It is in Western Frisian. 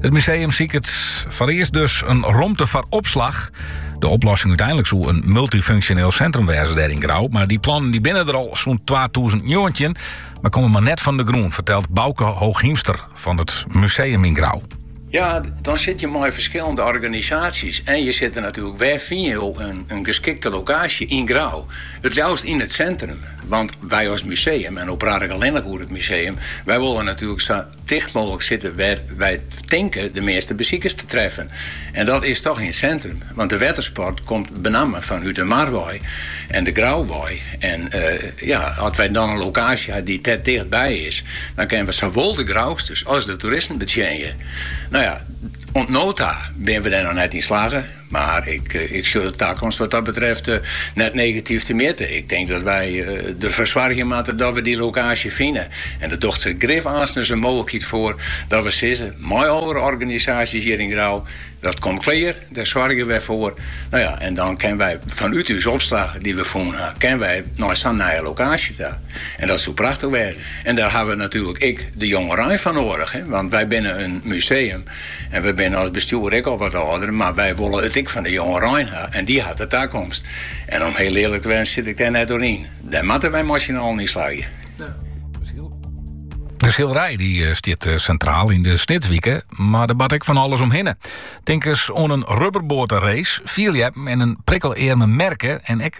It museum siket foarearst dus in romte foar opslach. De oplossing úteinlik soe in multifunksjoneel sintrum wêze dêr yn Grou, mar dy plannen dy binne der al sûnt twatûzen njoggentjin, mar komme mar net fan de grûn, fertelt Bauke Hooghiemster fan it museum yn Grou. Ja, dan sit je mei ferskillende organisaasjes en je sitte natuerlik, wêr fyn je in geskikte lokaasje yn Grou? It leafst yn it sintrum, want wij als museum en no praat ik allinnich oer it museum, wy wolle natuerlik sa Ticht mooglik sitte wêr wy tinke de measte besikers te treffen. En dat is toch yn sintrum, want de wettersport komt benammen fanút de mar wei en de Grou wei. En ja, as wy dan in lokaasje ha dy't dêr ticht by is, dan kinne we sawol de Grousters as de toeristen betsjinje. No ja, oant no ta binne we dêr noch net yn slagge. Mar ik sjoch de takomst wat dat betreft net negatyf temjitte. Ik tink dat wy derfoar soargje moatte dat we dy lokaasje fine. En der docht se grif aanstens in mooglikheid foar dat we sizze mei oare organisaasjes hjir yn Grou, dat komt klear, dêr soargje we foar. No ja, en dan kinne wy fanút ús opslach dy't we fûn ha, kinne wy nei sa'n nije lokaasje ta. En dat soe prachtich wêze. En dêr hawwe we natuerlik ek de jongerein foar noadich, want wy binne in museum En we binne as bestjoer ek al wat âlder, mar wy wolle it ek fan de jongerein ha en dy hat de takomst. En om hiel earlik te wêzen sit ik dêr net oer yn. Dêr moatte wy mei syn allen yn slagje. De silerij die eh, stiet eh, centraal yn de Snitswike, mar der bart ek fan alles omhinne. Tink ris oan in rubberboaterace, fierljeppen en in prikkelearme merke en ek